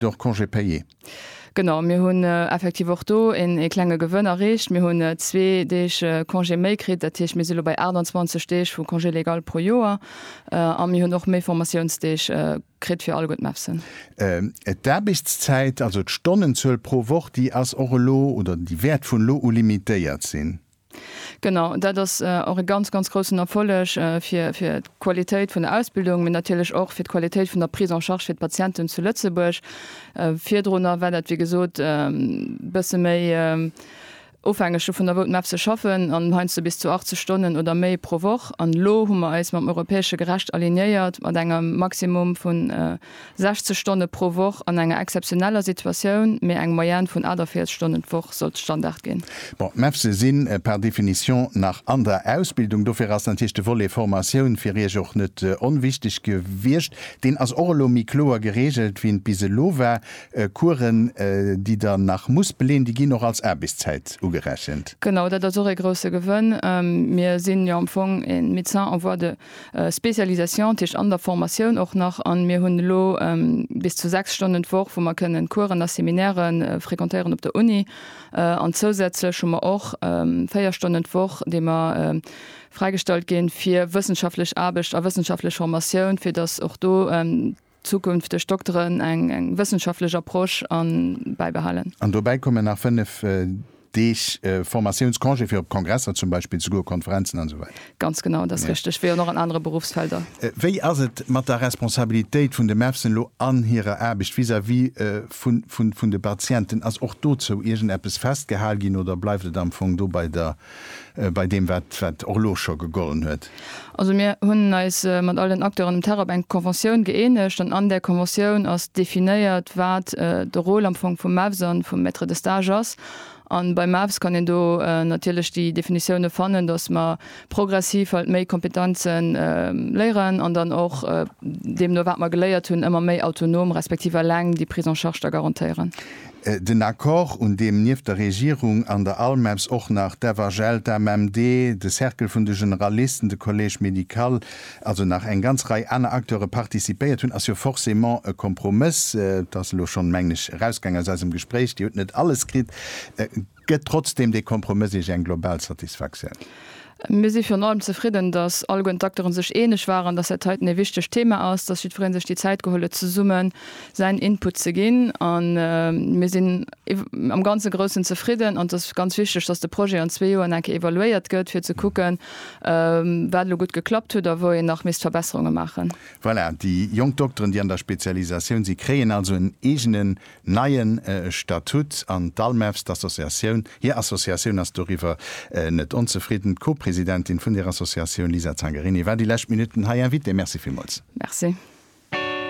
de och Congé payé. Genau, mir hunn effektiv och do een ee klenge Gewënn erreecht. Mir hunn zwee Deeg Congé méi kritt. Dat heescht, mir si lo bei 28 Deeg vu Congé légal pro Joer. A mir hunn och méi Formatiounsdeeg kritt fir alleguer d'MEPSen. D'Aarbechtszäit, also d'Stonnenzuel pro Woch, déi ass och elo oder déi wäert vun elo u limitéiert sinn. Genau, dat ass och e ganz, ganz groussen Erfolleg fir d'Qualitéit vun der Ausbildung, mee natierlech och fir d'Qualitéit vun der Prise en charge fir d'Patienten zu Lëtzebuerg. Virdrunner war dat, wéi gesot, e bësse méi ofhängeg dovun, wou d'MEPS se schaffen, an heiansdo bis zu 80 Stonnen oder méi pro Woch. An elo hu mer eis mam europäesche Gerecht alignéiert, mat engem Maximum vun 60 Stonne pro Woch an enger exzeptioneller Situatioun, mee eng Moyenne vun 48 Stonnen d'Woch sollt Standard ginn. Bon, d'MEPSe si par définition nach an der Ausbildung, dofir ass natierlech de Volet Formatioun fir Iech och net onwichtig gewiescht. Deen ass och elo méi kloer geregelt, wéi en bis elo war. Coursen, déi Der nach musst beleen, déi ginn och als Aarbechtszäit ugerechent. Genau, dat ass och ee grousse Gewënn. Mir sinn jo am Fong ee Médecin en voie de. Spécialisation, dat heescht an der Formatioun och nach, an mir hunn elo bis zu 6 Stonnen d'Woch wou mer kënnen Coursen a Seminaire fréquentéieren op der Uni, an zousätzlech hu mer och 4 Stonnen d'Woch déi mer fräigestallt ginn fir wëssenschaftlech Aarbecht a wëssenschaftlech Formatioun, fir datt och do zukünfteg Dokteren eng wëssenschaftlech Approche a bäibehalen. An dobäi kommen nach fënnef Deeg Formatiounscongé fir op Kongresser zum Beispill ze goen, Konferenzen an esou weider. Ganz genau, dat ass richteg, wéi och nach an anere Beruffsfelder. Wéi ass et mat der Responsabilitéit vun de MEFSen elo an hirer Aarbecht vis-à-vis vun de Patienten? Ass och dozou iergendeppes festgehal ginn oder bleift et am Fong do bei der bei deem, wat och elo scho gegollen huet? Also mir hunn eis mat all den Acteuren um Terrain op eng Conventioun gëeenegt an an där Conventioun ass definéiert, wat de Rôle am Fong vum MEVS a vum Maître de stage ass. A beim MEVS kann een do natierlech déi Definitioune fannen, datt mer progressiv halt méi Kompetenze léieren an dann och deemno wat mer geléiert hunn ëmmer méi autonom respektiv eleng déi Prise en charge da garantéieren. Den Accord, un deem nieft der Regierung an der ALMEPS och nach d'FHL, d'AMMD, de Cercle vun de Generalisten, de Collège médical, also nach eng ganz Rei aner Acteure participéiert hunn, ass jo forcément e Kompromëss. Et ass elo schonn, mengen ech, erausgaang aus eisem Gespréich, Dir hutt net alles kritt. Gëtt trotzdeem dee Kompromëss Iech eng global Satisfaktioun? Mir si virun allem zefridden, dass alleguerten d'Acteuren sech eeneg waren, dass dat heiten ee wichtegt Thema ass, dass jiddweree sech déi Zäit geholl huet, zesumme säin Input ze ginn. A mir sinn am ganze Groussen zefridden. An et ass ganz wichteg, dass de Projet an zwee Joren eng Kéier evaluéiert gëtt, fir ze kucken, wat elo gutt geklappt huet a wou een nach misst Verbesserunge maachen. Voilà, déi jonk Dokteren, déi an der Spezialisatioun sinn, kréien also en eegene neien Statut an d'ALMEVS, d'Associatioun, hir Associatioun ass doriwwer net onzefridden. D'Co-Presidentin vun där Associatioun, Lisa Zangarini, war déi lescht Minutten hei Invitée. Merci villmools. Merci.